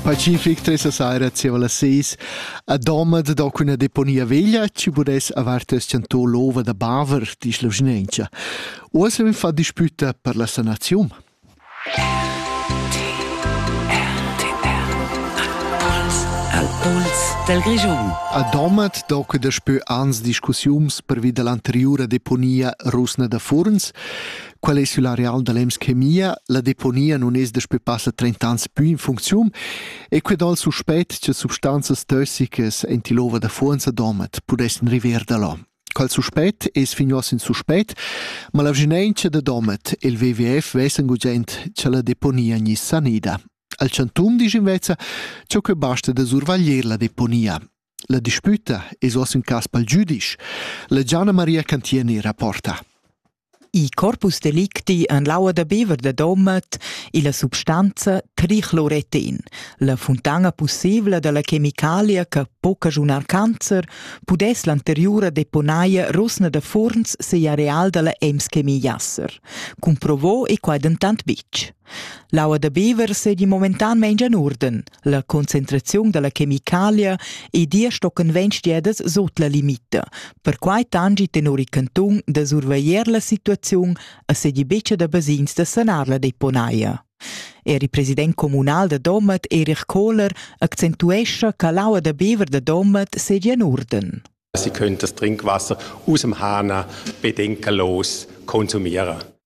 Pacific tres a saira zieva las seis a Domat do cun la deponia veglia chi pudess avar teschanto l'ova da Baver, disch la vschinengia. Uoss vegn fa dispüta per la sanaziun. Al puls del Grischun. A Domat do que daspö ans discussiuns pervi da l'anteriura deponia rusna da Furns. Quel ei sül areal da l'EMS Chemia, la deponia non es daspö passa 30 ans pü in funcziun e que dal suspet che substanzas tossicas in tilova da fuonza domat pudessan river da là. Quel suspet es finios in suspet, ma la vginencia da domat e il WWF vessen gugent che la deponia gni sanida. Al chantum disch invezza, cho que basta da survaglier la deponia. La dispüta es uoss ün cas pel giüdisch. La Gianna Maria Cantieni rapporta. Il corpus delicti en l'aua da bever da Domat illa substanza tricloretin, la funtana pussibla da la chemicalia che po cagiunar cancer, pudess l'anteriura deponaia Rosna da Furns seir areal da la Ems Chemie Jasser. Cumprovò e quai dentant bitg. L'aua da bever seigi momentan meins en uorden. La concentraziun dalla chemicalia e dir stocken ventg diedas sut la limita. Perquai tangi tenor il cantun da surveglier la situaziun e sedi becca da basins da sanar la deponaia. Er il president communal da Domat, Erich Kohler, accentuescha che l'aua da bever da Domat sedia en urden. Sie können das Trinkwasser aus dem Hahner bedenkenlos konsumieren.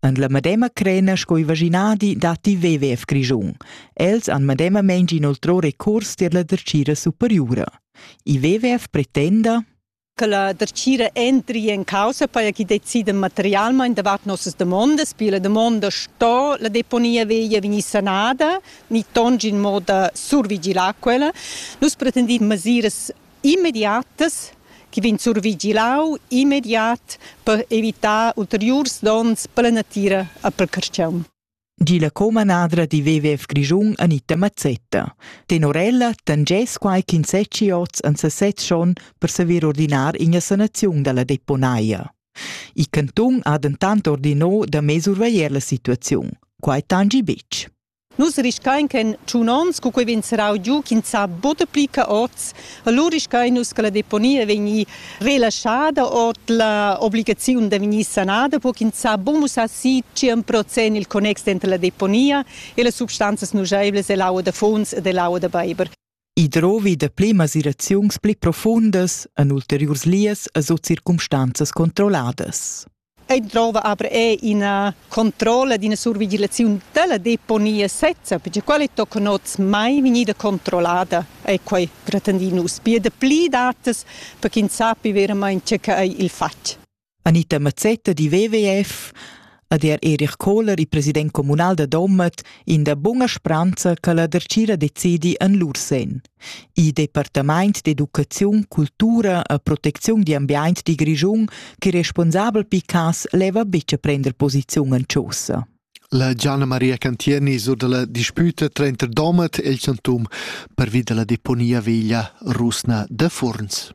En la medema crena sco il vaginadi datti WWF Grischun. Els han medemamain inoltrò recurs tier la dertgira superiura. Il WWF pretenda che la dertgira entri in causa per chi decida materialmente davart nossas demandas, perché la domanda sto la deponia veglia venir sanada, ni tongi in modo survigilar quella. Nus pretendiamo mesiras immediatas che vegn survigilau immediat per evitar ulteriurs donns per la natira e per carstgaun. Di la comanadra di WWF Grischun Anita Mazzetta. Tenor ella tangess quai quinsetti oz an sesez schon per saver ordinar ina sanaziun dalla deponaia. Il cantun ha dentant ordinò da mesurveglier la situaziun. Quai tangi betg. Nus riscain che in tschun ons, cu quei vegn serrau giu, ch'ins sa buca pli ca oz, allura riscain nus che la deponia vegni relaschada ord la obligaziun da vegnir sanada, per ch'ins sa buca mussar si tschien procent il connex denter la deponia e las substanzas nuscheivlas ell'aua da funs ed ell'aua da beiber. I drovi da pli masiraziuns pli profundas en ulteriurs lias e sut circumstanzas controlladas. Ei drova aber è ina controlla d'ina survigilazione della deponia sezza, perché quale toccano mai vegnida controllata è quei gratandinus. Pia da pli datas per ch'ins sappi veramente che è il fatg. Anita Mazzetta di WWF ad er Erich Kohler, il president communal da Domat, in da bunga spranza che la dercira decidi en lur sen. Il departament d'educaziun, cultura e protecziun di ambiente di Grischun, che responsabel Picas leva bitte prender posizion en chaussa. La Gianna Maria Cantieni sur dalla disputa tranter Domat e il Chantum pervi dalla deponia veglia rusna da Furns.